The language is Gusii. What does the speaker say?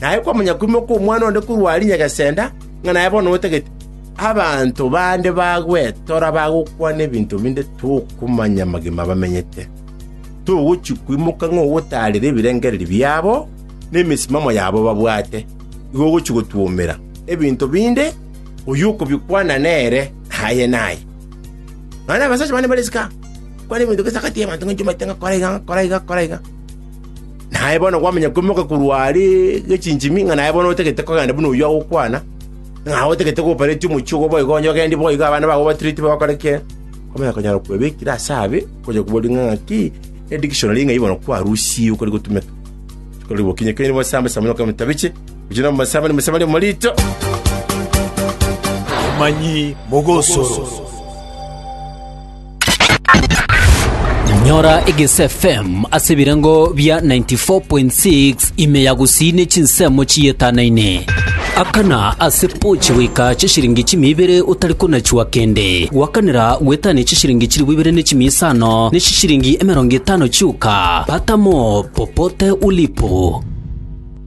Naye kwamonyakumokwa omwana onde korwa aria nyagesenda, ng'a naye bono otagete. Abanto bande bagwetora bagokwana ebinto binde tokomanya amagima bamenyete. Togochia kwimoka ng'a ogotaarera ebirengererio biabo na emesimamo yabo babwate, igo ogochia gotwomera. Ebinto binde oyio okobikwana nere, naye naye. Nonya abasacha bande mbare isiko aa, bakwane ebinto gese agati y'abanto ng'a inche omanyete ng'a kora iga, ng'a kora iga, ng'a kora iga. Na aye bono gwamanya koimoka korwa are gechichimi, ng'a naye bono otagete kogenda buna oyio agokwana, ng'a otagete goparetia omochie obo boigo onye ogendi boigo abana bao obatireti bagokora ki? Kwamanya konyara kwebekire ase abe, kwachaka koboria ng'a ng'aki edictionary ng'ai bono kwarusiigwe kori gotumeka. Kori bokinye kere mosamba samba nokore motabiche, gochia nomo mosamba ni mosamba ni omorito. Abamanyi mogosoro. Nyora Egese FM ase ebirengo bia 94.6 ime ya gusii ne chinsemo chiyetanaine. Akana ase pochi goika chishiringi chimia ibere otari konachua kende. Gwakanera gwetania chishiringi chilifu ibere ne chimia isano ne chishiringi emerongo etano chioka. Pata mo popote ulipo.